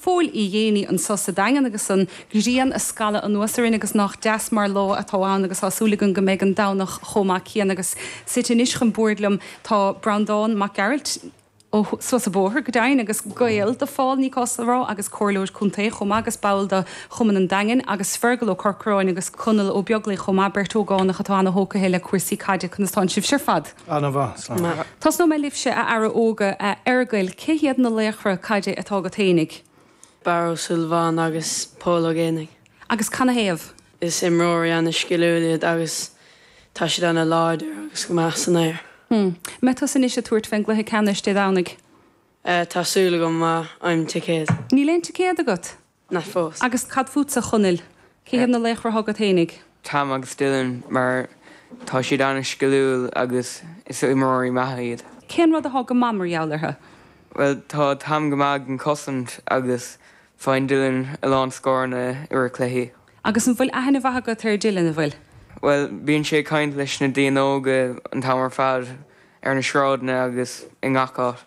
Fós fé dhéanaí anso sa Daingean agus an ghrian ag scalladh anuas orainn agus nách deas mar lá atá ann agus tá súil againn go mbeidh an Domhnach chomh maith céanna agus suite anois chun boird liom tá Breandán Mac Gearailt ó Sruth a' Bhóthair go deimhin agus gaol do Phól ní gá dhom a rá agus comhairleoir contae chomh maith agus ball do Chumann an Daingin agus Feargal Ó Corcráin agus Conall Ó Beaglaoich chomh maith, beirt ógánach atá ana-thógtha le cúrsaí caide conas tánn sibhse ar fad? Ana-mhaith, slán. Tosnóidh mé libhse, a fheara óga, a Fheargail, cé hiad na laochra caide atá agat fhéinig? Barra Ó Súilleabháin agus Pól Ó Géibheannaigh. Agus canathaobh? Is imreoirí ana sciliúil iad agus tá siad ana láidir agus go maith san aer. Hm. Mbeidh tusa anois ag tabhairt fén gcluiche ceannais Dé Domhnaigh? Eh, tá súil agam, má fhaighim ticéad. Níl aon ticéad agat? Ná fós. Agus cad fútsa, Chonaill? Cé hiad na laochra atá agat fhéinig? Tom agus Dylan mar tá siad an-sciliúil agus is imreoirí maithe iad. Cén rud a thá go maith mar gheall orthu? Bhuel, tá Tom go maith ag an cosaint agus faigheann Dylan a lán scóranna i rith cluichí. Agus an bhfuil aithne mhaith agat ar Dylan, an bhfuil? Bhuel, bíonn sé ag caint leis na daoine óga an t-am ar fad, ar na sráideanna agus i ngach áit.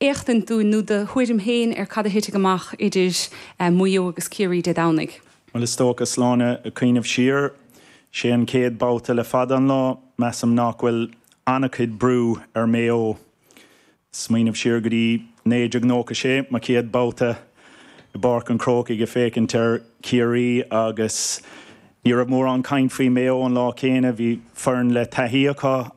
éachtaint dúinn nó do thuairim féin ar cad a thitfidh amach idir Maigh Eo agus Ciarraí Dé Domhnaigh. Bhuel, is dócha, Sláine, ag cuimhneamh siar, sé an chéad babhta le fada an lá, measaim nach bhfuil an-chuid brú ar Maigh Eo. Smaoineamh siar go dtí 1996, mo chéad babhta i bPáirc an Chrócaigh ag féachaint ar Chiarraí agus ní raibh mórán caint faoi Maigh Eo an lá céanna. Bhí foireann le taithí acu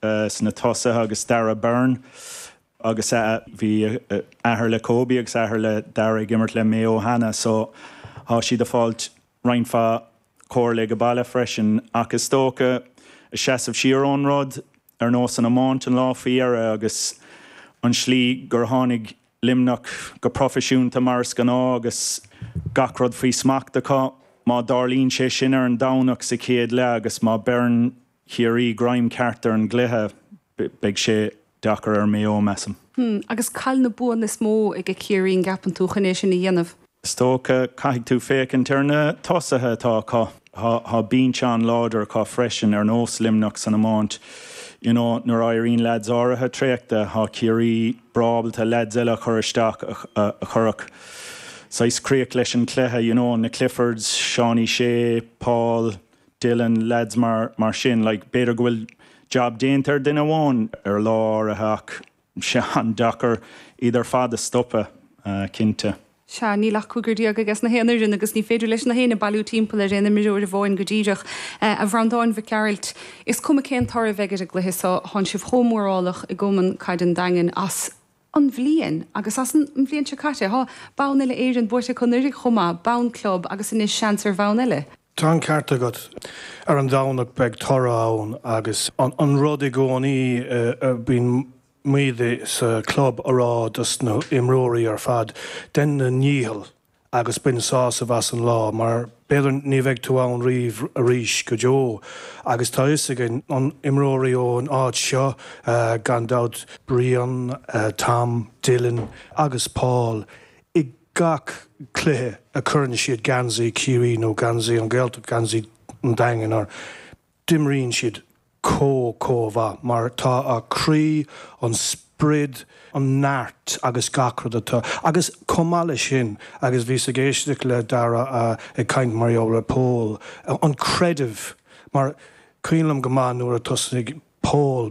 sna tosaithe agus Dara Beirne agus a bhí athair le Kobe agus athair le Dara ag imirt le Mayo cheana so tá siad a fáilt roinnt mhaith comhairle aige baile freisin ach is dócha a seasamh siar ón rud ar nós an iomáint an lá faoi dheireadh agus an slí gur tháinig Luimneach go proifisiúnta mar is gnáth agus gach rud faoi smacht acu má tharlaíonn sé sin ar an Domhnach sa chéad leath agus má beireann Ciarraí greim ceart ar an gcluiche, beidh sé deacair ar Maigh Eo, measaim. Hmm, agus cad iad na buanna is mó aige Ciarraí, an gceapann tú, chun é sin a dhéanamh? Is dócha, caithfidh tú féachaint ar na tosaithe atá acu. Tá binse an-láidir acu freisin, ar nós Luimneach san iomáint. You know, nuair a éiríonn leaids áirithe traochta, tá Ciarraí breá ábalta leaids eile a chur isteach, a chuirfeadh saghas críoch leis an chluiche, you know, na Cliffords, Seánie Shea, Paul. Dylan, leaids mar sin, like, b'fhéidir go bhfuil jab déanta ar duine amháin ar lá áirithe ach beidh sé an-deacair iad ar fad a stopadh, cinnte. Sea, níl ach cúigear déag aiges na haon fhoireann agus ní féidir leis na héinne bailiú timpeall ar aon imreoir amháin go díreach. A Bhreandáin Mhic Gearailt, is cuma cén toradh a bheidh ar an gcluiche so, thán sibh chomh mórálach i gCumann Caide an Daingin as, an bhliain agus as an mbliain seo caite. Tá bonn uile Éireann buaite acu anuraidh chomh maith, bonn club agus anois seans ar bhonn uile. Tá an ceart agat. Ar an Domhnach beidh toradh ann agus an rud i gcónaí a bíonn muid sa chlub a rá dos na h-imreoirí ar fad, dein do ndícheall. agus bain sásamh as an lá mar b'fhéidir ní bheidh tú ann riamh arís go deo agus tá fhios againn imreoirí ón áit seo gan dabht, Brian, Tom, Dylan agus Paul i gach cluiche a cuireann siad geansaí Chiarraí nó geansaí an Ghaeltacht, geansaí an Daingin orthu. D'imríonn siad comh comh mhaith mar tá a croí, an sprid, an neart agus gach rud atá. Agus comh maith leis sin, agus bhíos ag éisteacht le Dara ag caint mar gheall ar Pól, an creideamh, mar cuimhin liom go maith nuair a tosnaigh Pól,